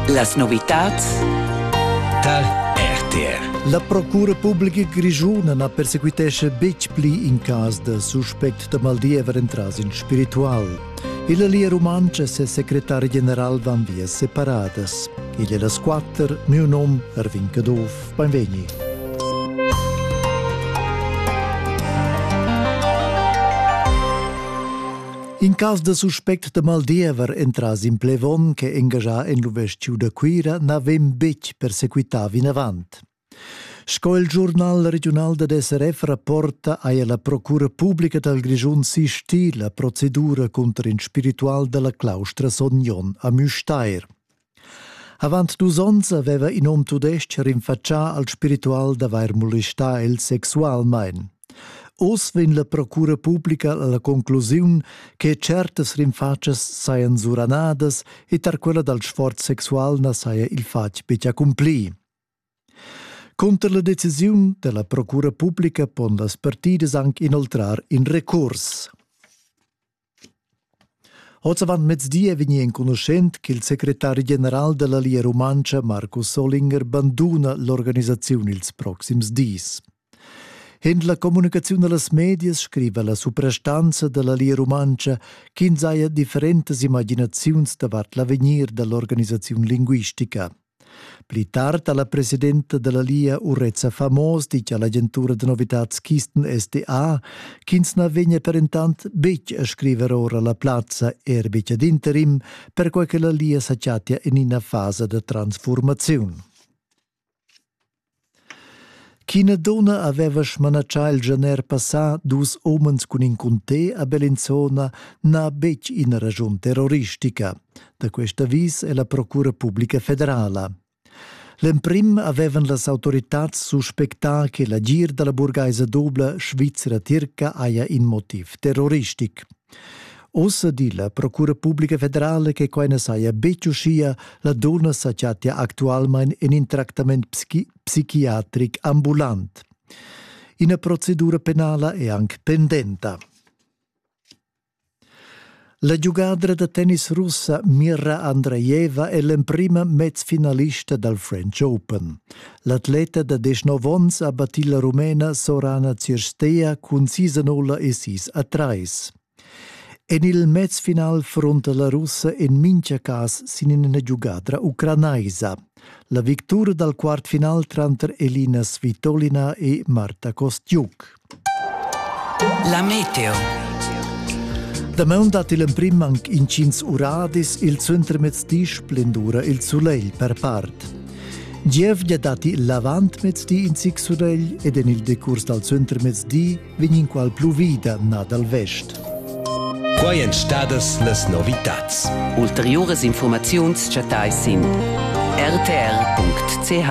Las novitads tar RTR. La Procura pubblica grischuna na persequitesce betg pli in cas da suspect da mal diever entras in spiritual. Il Lia Rumanca e ses secretari general van via separadas. Igl è las quatter, mio nom Ervin Caduff. Benvegni. In cas da suspect da maldiever entras in plevon che engagia en l'uvestiu da Cuira na vegn betg persequità vinavant. Sco il giurnal regional da DSRF rapporta, haja la Procura pubblica dal Grischun sistì la procedura contro in spiritual dalla claustra Sognon a Müstair. Avant dus onns aveva in hom tudestg rinfatschà al spiritual d'avair molestà el sexualmain. Oz vegn la procura publica a la conclusiun che certas rinfatschas sajan suranadas e tar quella dal sforz sexual na saja il fatg betg accumplì. Cunter la decisiun dalla procura publica pon las partidas anc inoltrar in recurs. Oz avant mezdi è vegnì enconuschent ch'il secretari general della Lia Rumantscha Markus Solinger banduna l'organisaziun ils proxims dis. En la communicaziun da las medias scriva la suprastanza da la Lia Rumantscha ch'ins haja differentas imaginaziuns davart l'avegnir da l'organisaziun linguistica. Pli tard ha la presidenta da la Lia Urezza Famos ditg a l'agentura da novitads Kisten SDA ch'ins na vegnia per entant betg a scriver ora la plazza er betg ad interim, perquai che la Lia sa chattia en ina fasa da transfurmaziun. Ch'ina dunna haveva smanatschà il gener passà dus umens cun in cunté a Bellinzona n'ha betg ina raschun terroristica. Da quest avis è la Procura publica federala. L'emprim avevan las autoritads suspectà che l'agir da la burgaisa dubla svizra-tirca haja in motiv terroristic. Ossa di la Procura Publica Federala che quai na saja betg uschia, la dunna sa chattia actualmain en in tractament psichiatric ambulant. Ina procedura penala è anc pendenta. La giugadra da tennis russa Mira Andreeva è l'emprima mezfinalista dal French Open. L'atleta da deschnov onns ha battì la Rumena Sorana Cirsteia cun sis a nulla e sis a trais. En il mezfinal fronta la russa en mintga cas sin ina giugadra ucranaisa. La victura dal quart final tranter Elina Svitolina e Marta Kostiuk. La meteo. Dameun dat il emprim anc intgins uradis il suentermezdi splendura il sulegl per part. Gievgia datti l'avantmezdi in zic sulegl ed en il decurs dal suentermezdi vegn inqual pluvida nà dal vest. Quai èn stadas las novitads. Ulteriuras informaziuns chattais sin rtr.ch.